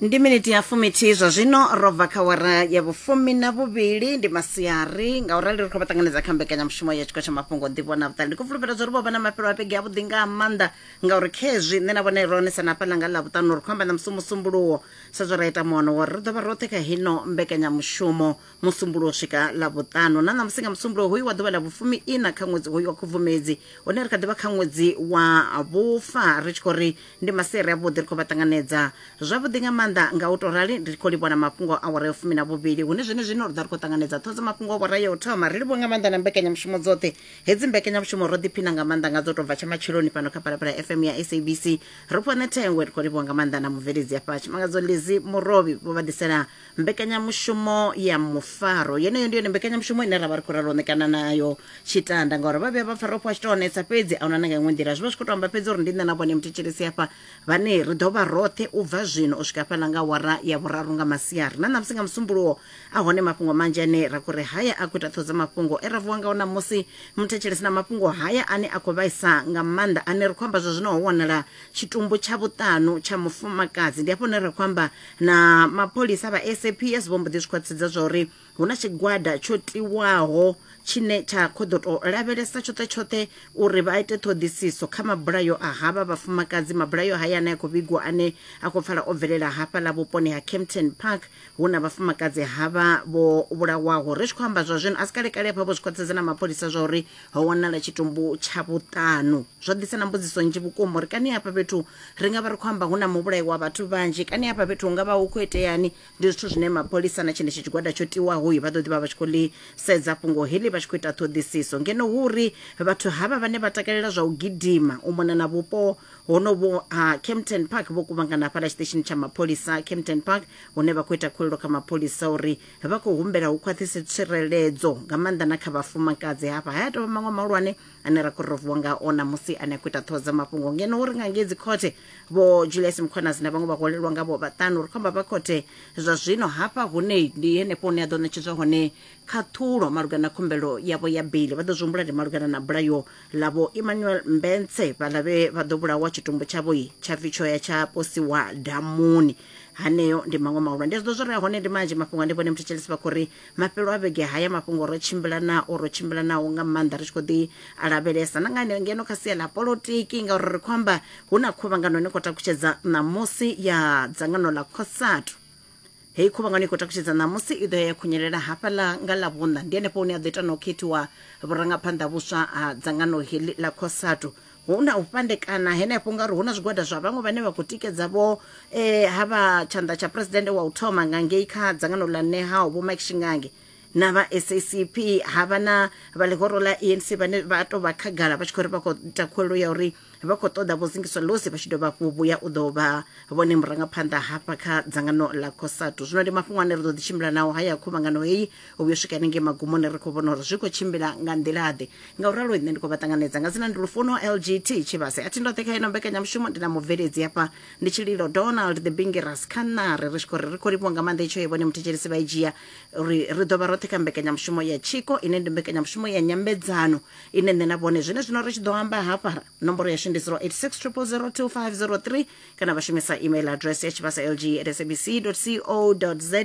ndi miniti ya fumithihi zwa zwino ro bva kha wara ya vhufumi na vhuvhili ndi masiari nga u rali ri khou vha ṱanganedza kha mbekanyamushumo ya tshiko tsha mafhungo nḓivho na vhuṱali ndi khou fulufhela zwa uri vho vha na mafhelo a vhege a vhuḓi nga maanḓa ngauri khezwi nṋe na vhone ro onesa na fhaḽa nga ḽa vhuṱanu ri khou amba na musi musumbuluwo sa zwo ra ita muono wori ri ḓo vha roṱhe kha hino mbekanyamushumo musumbulo u swika ḽavhuṱanu na ṋamusi nga musumbulo hoyu wa ḓuvha ḽa vhufumi ina kha ṅwedzi hoyu wa khubvumedzi hune ri kha ḓivha kha ṅwedzi wa vhufa ri tshi khou ri ndi maseri avhuḓi ri khou vha ṱanganedza zwavhuḓi nga maanḓa nga u to rali ri khou livhona mafhungo a wara ya fumi na vhuvhili hune zwene zwino ri ḓa ri khou ṱanganedza ṱhodzo mafhungo a wara ya u thoma ri livho nga maanḓa na mbekanyamushumo dzoṱhe hedzi mbekanyamushumo ro ḓiphina nga maanḓa nga dzo tou bva tsha matsheloni fhano kha palapala fm ya sabc ri fhone thengwe ri khou livhwa nga maanḓa na mubveledzi afha tshimangadzo lizi murovhi vho vha ḓisela mbekanyamushumo ya mufaro yeneyo ndi yone mbekanyamushumo ine ra vha ri khou ralo ṋekana nayo tshitanda ngauri vha vhuya vha pfa ro fhiwa tshitoonetsa fhedzi a huna na nga iṅwe nḓila zwi vha zwi khou to amba fhedzi uri ndi nṋe na vhone muthetshelesi hafha vhane ri ḓo vha roṱhe u bva zwino u swika fhaḽa nga wara ya vhuraru nga masiari na ṋamusi nga musumbuluwo a hone mafhungo manzhi ane ra khou ri haya a khou ita ṱhodza mafhungo e ra vuwa ngao ṋamusi muthetshelesi na mafhungo haya ane a khou vhaisa nga maanḓa ane ri khou amba zwa zwino ho wanala tshitumbu tsha vhuṱanu tsha mufumakadzi ndi hafho hune ra khou amba na mapholisa vha saps vho mbo ḓi zwi khwaṱhisedza zwa uri hu na tshigwada tsho tiwaho tshine tsha khou ḓo tou lavhelesa tshoṱhe tshoṱhe uri vha ite ṱhoḓisiso kha mabulayo a havha vhafumakadzi mabulayo haya ane a khou vhigwa ane a khou pfala o bvelela hafha ḽa vhuponi ha campton park hu na vhafumakadzi havha vho vhulawaho ri tshi khou amba zwa zwino a si kalekale hafha vho zwi khwaṱhisedza na mapholisa zwa uri ho wanala tshitumbu tsha vhuṱanu zwo ḓisa na mbudziso nzhi vhukuma uri kani hafha fhethu ri nga vha ri khou amba hu na muvhulayi wa vhathu vhanzhi kani hafha fhethu hu nga vha hu khou iteani ndi zwithu zwine mapholisa na tshenetsho tshigwada tsho tiwaho vha ḓo ḓi vha vha tshi khou ḽi sedza fhungo heḽi vha tshi khou ita ṱhoḓisiso ngeno hu uri vhathu havha vhane vha takalela zwa u gidima u mona na vhupo honovho ha campton park vho kuvhangana hafhaḽa tshiṱeshini tsha mapholisa campton park hune vha khou ita khulelo kha mapholisa uri vha khou humbela hu khwaṱhise tsireledzo nga maanḓa na kha vhafumakadzi hafha haya tovha maṅwe mahulwane ane ra khou rovuwa nga ona musi ane a khou ita ṱhoho dza mafhungo ngeno uri nga ngei dzikhothe vho julius mkhonasi na vhaṅwe vha holelwa nga vho vhaṱanu ri khou amba vha khothe zwa zwino hafha hune ndi henefho hune a ḓo ṋetshedzwa hone khaṱhulo malugana na khumbelo yavho ya beli vha ḓo zwi humbula ndi malugana na bulayo ḽavho emmanuel mbense vhaḽa vhe vha ḓo vhulawa tshitumbu tshavho tsha pfi tsho ya tsha posiwa damuni haneo ndi maṅwe mahulwane ndi zwiḓo zwo rea hone ndi manzhi mafhungo a ndi vhone muthu tshelesi vha khou ri mafhelo a vhege haya mafhungo ro tshimbila nao ro tshimbila nao nga maanḓa ri tshi khou ḓi a lavhelesa na nga haneo ngeno kha sia ḽa polotiki ngauri ri khou amba hu na khuvhangano ine khou takutshedza ṋamusi ya dzangano ḽa cosatu heyi khuvhangano i khou takutshedza ṋamusi i ḓo ya ya khunyelela hafhaḽa nga ḽa vhuṋa ndi henefho hune a ḓo ita na u khethiwa vhurangaphanḓa vhuswa ha dzangano heḽi ḽa cosatu Hu na u fhandekana henefho ngauri hu na zwigwada zwa vhaṅwe vhane vha khou tikedza vho e, ha vha tshanḓa tsha presidennde wa u thoma nga ngei kha dzangano ḽa nehao vho mike shingange na vha sacp ha vha na vha ḽihoro ḽa enc vhane vha tou vha khagala vha tshi khou ri vha khou ita khuwelelo ya uri vha khou ṱoḓa vho zingiswa losi vha tshi dovha hafhu vhuya u ḓo vha vhone murangaphanḓa hafha kha dzangano ḽa cosatu zwino ndi mafhungo ane ri ḓo ḓi tshimbila nao haya khuvhangano heyi u vhuya u swika hanengei magumoni ri khou vhona uri zwi khou tshimbila nga nḓilaḓe nga u ralo nṋe ndi khou vha ṱanganedza nga dzina ndi lufuno lgt tshivhase a thi ndoṱhe kha ino mbekanyamushumo ndi na mubveledzi hafha ndi tshililo donald the bingiras kha ṋari ri tshi khou ri ri khou livhuwa nga maanḓa itsho ye vhone muthetshelesi vha i dzhia uri ri ḓo vha roṱhe kha mbekanyamushumo ya tshiko ine ndi mbekanyamushumo ya nyambedzano ine nṋe na vhone zwine zwino ri tshi ḓo amba hafha nomboro yashu ndi 086 0002503 kana vha shumisa email address ya tshivhasa lg at sabc co za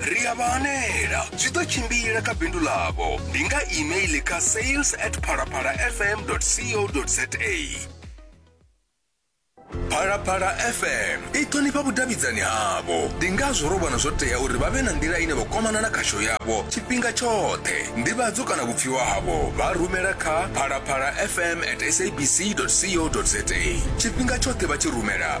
ri a vha hanela zwi ḓo tshimbila kha bindu ḽavho ndi nga email kha sales at phalaphala fm co za phalaphala fm i ṱhonifha vhudavhidzani havho ndi ngazwo ro vhona zwo tea uri vha vhe na nḓila ine vha kwamana na khasho yavho tshifhinga tshoṱhe ndivhadzo kana vhupfiwa havho vha rumela kha phalaphala fm at sabc co za tshifhinga tshoṱhe vha tshi rumela